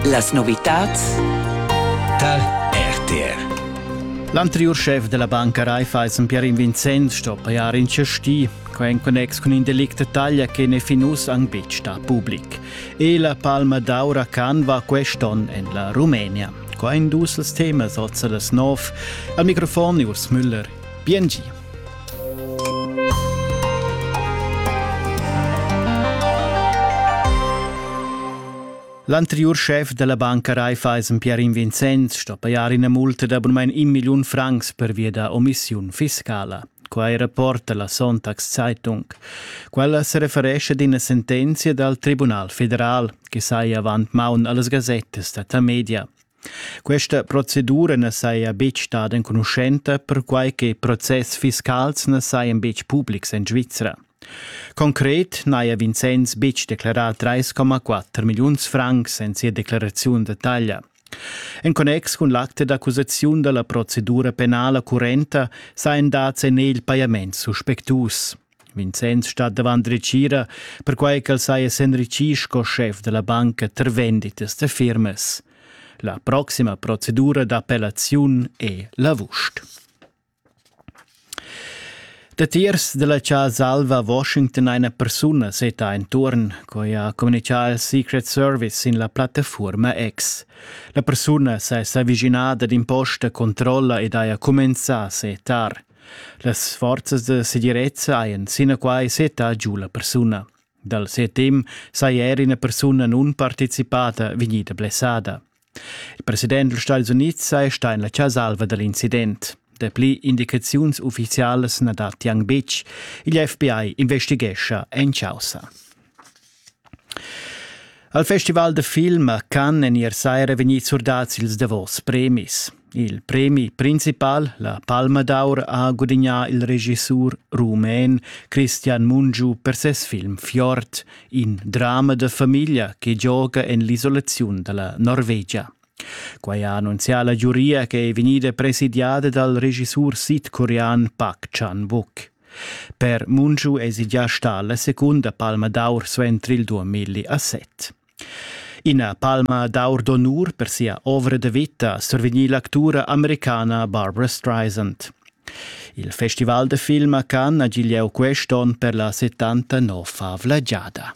Las novitads tar RTR. L'anteriur chef della banca Raiffeisen Pierin Vincenz sto pajar in cesti, quai en connex cun in delict da taglia che ne fin uss ang betg sta public. E la palma d'aura canva quest'on en la Rumenia. Qua in dus als temas Ozza das Nov. Al microfon Urs Müller. BNG. L'anteriur schef della banca Raiffeisen Pierin Vincenz sto pajar ina multa da abunmain un milliun francs per via da omissiun fiscala. Quai rapporta la Sonntagszeitung. Quella se referesce ad ina sentenzia dal Tribunal federal che sai avant maun allas gasettas da Tamedia. Questa procedura na saja betg stada enconuschenta, perquai che process fiscals na sajan betg publics en Svizra. Concret n'haja Vincenz betg declerà 3,4 milliuns francs en sia declaraziun detaglia. En connex cun l'acte d'accusaziun da la procedura penala currenta sajan dads en egl pajaments suspectus. Vincenz stat davant retgira, perquai ch'el saja s'enritgì sco schef da la banca tar venditas da firmas. La proxima procedura d'appellaziun è l'avust. Datiers della Casa Alva a Washington eine persona seta intorn, coi ha comunicà il Secret Service in la plattaforma X. La persuna s'è s'avvicinada d'imposta controlla ed haja cumenzà a setar. Las forzas da segirezza hajan sinaquai settà giu la persuna. Dal set temp saja er ina persuna nunparticipada vegnida blessada. Il president dals Stati Unids saja stà en la chasalva da l'incident. Dapli indicaziuns uffizialas na datti anc betg. Il FBI investighescha en chaussa. Al festival da film han en ier saira vegnì surdads ils davos premis. Il premi principal, la Palma d'Aur, ha gudignà il regissur rumen Christian Mungiu per ses film Fjord, in drama da famiglia che gioga en l'isolaziun da la Norvegia. Quai ha annunzià la giuria che è vegnida presidiada dal regissur sidcorean Park Chan-wook. Per Munju èsi già stà la secunda palma d'aur suenter il 2007. Ina palma d'aur d'onur per sia ovra da vita ha survegnì l'actura americana Barbara Streisand. Il festival da film a Cannes ha giu lieu quest onn per la 79-avla giada.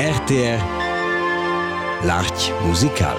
RTR L'Arch musical